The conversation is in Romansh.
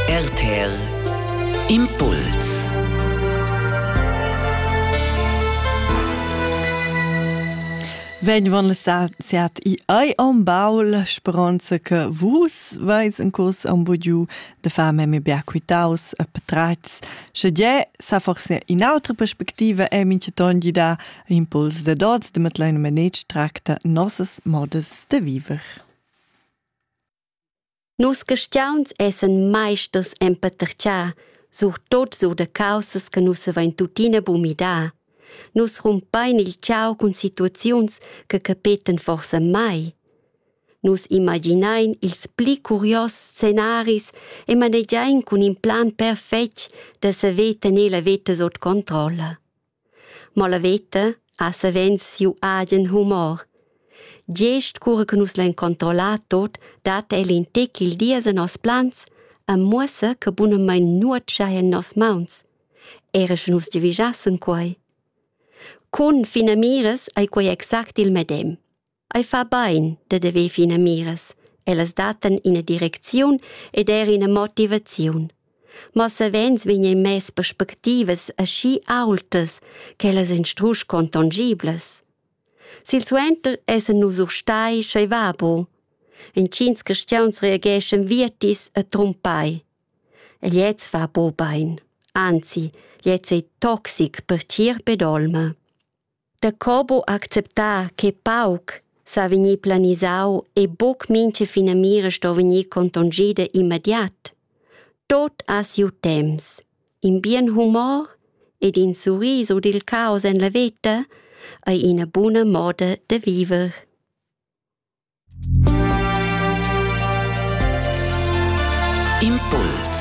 RTL Impuls Vegn sert i ai on baul speronza che vus veis in curs on budiu de far memi bia quitaus e petrats, sche ge sa forse in autra perspectiva è mince tondi da impuls de dots de metlein manetsch tracta nossas modas de viver. Nus carstgauns essan maisters en patertgar, surtot sur da caussas che nus havein tuttina buc midar. Nus rumpain il tgau cun situaziuns che capetan forsa mai. Nus imaginain ils pli curios scenaris e manegiain cun in plan perfetg da saver tener la veta sut controlla. Mo la veta ha savens siu agen humor. Gest cura che nus lein controllar tot, dat el in tec il dies en nos plans e muossa che bunamein nuot schai en nos mauns, era sche nus giavischassen quei. Cun finamiras ei quei exact il medem. Ei fa bein da haver finamiras. Ellas dattan ina direcziun ed er ina motivaziun. Ma savens vegnan mess perspectivas aschi aultas ch'ellas ein strusch contongiblas. Silsuenter essan nus urstai sch'ei va bu. Entgins cristians reageschan vietis e trumpai. E gliez fa bu bein. Anzi, gliez ei toxic per tier ped olma. Da co bu acceptar che pauc sa vegnir planisau e buc mintga finamira sto vegnir contongida immediat. Tot ha siu temps. In bien humor ed in surriso dil caos en la veta ei ina buna moda da viver. Impuls